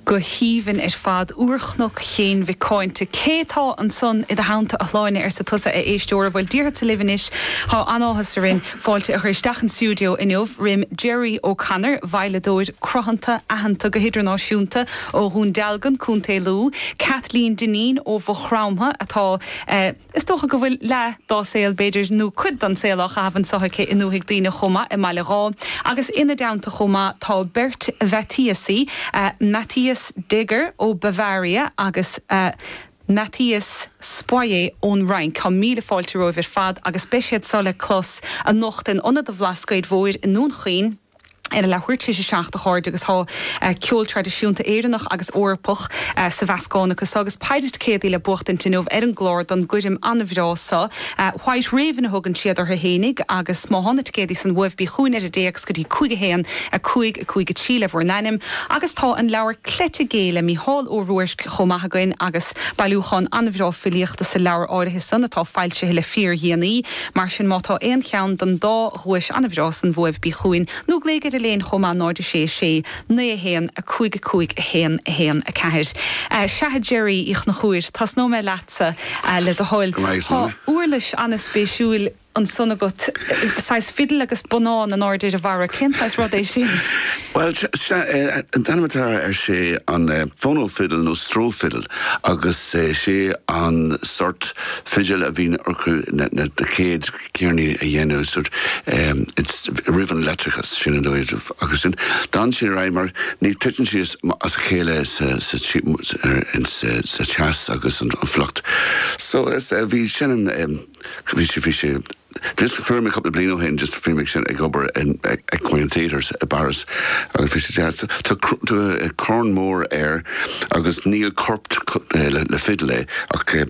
Go haoibhinn ar fad. Úrchnoc Chéin Mhic Cáinte. Cé tá ansan i do theannta, a Shláine? arsa tusa, a éisteoir. Bhuel, déarfadsa libh anois, tá an-áthas orainn fáilte a chur isteach chun stiúideo inniu roim Gerry O Connor, veidhleadóir cruthanta aitheanta go hidirnáisiúnta ó Dhún Dealgan, Co. Lú, Kathleen Dineen ó Mhaigh Chromtha, atá. Is dócha go bhfuil leath dá saol, b'fhéidir, nó cuid den saol á chaitheamh anso aici i nDúthaigh Duibhne chomh maith, i mBaile Dháith. Agus ina dteannta chomh maith tá beirt Mhaitiasaí, Matthias Deger ó Bavaria agus Matthias Spoerry ón Fhrainc. Tá míle fáilte romhaibh ar fad agus beidh siad so le clos anocht in Ionad an Bhlascaoid Mhóir i nDún Chaoin, ar a leathuair tar éis a seacht, a chairde, agus tá ceol traidisiúnta Éireannach agus Eorpach sa mheascán acu so agus péire ticéadaí le buachtaint inniu ar an gclár don gcoirm an-bhreá so, White Raven a thugann siad orthu fhéinig agus má thá na ticéadaí san uaibh bí chughainn ar an dtéacs go dtí 5 1 5 5 3 le bhur n-ainm agus tá an leabhar Cleite Gé le Mícheál Ó Ruairc chomh maith againn agus bailiúchán an-bhreá filíochta sa leabhar áirithe san atá foilsithe le fíor-dhéanaí mar sin má tá aon cheann den dá dhuais an-bhreá san uaibh bí chugainn, nó glaoigh ar Elaine chomh maith 0 6 6 9 1 5 5 1 1 4 Sea, a Gerry Uí Chonchúir, tosnóidh mé leatsa, le do thoil. Tá uirlis an-spéisiúil ansan agat, saghas fiddle agus bonnán in airde ar a bharra. Cén saghas rud é sin? Bhuel, sea, an t-ainm atá air sé an phono fiddle nó Stroh fiddle agus sé an sórt fidil a bhíonn acu na chéad ceirníní a dhéanamh roimh an leictreachas, sin an dóigh, agus sin, d'fhan sin ar aghaidh mar ní, titeann sí as a chéile sa teas agus an fuacht. So, is ea, bhí sin an, bhí sé, bhí sé, just, fuair mé cúpla bliain ó shin, just, bhí mé ansin ag obair in Equine Theatre i bPáras agus bhí sé deas, tá corn mór air agus níl corp le fidil é ach.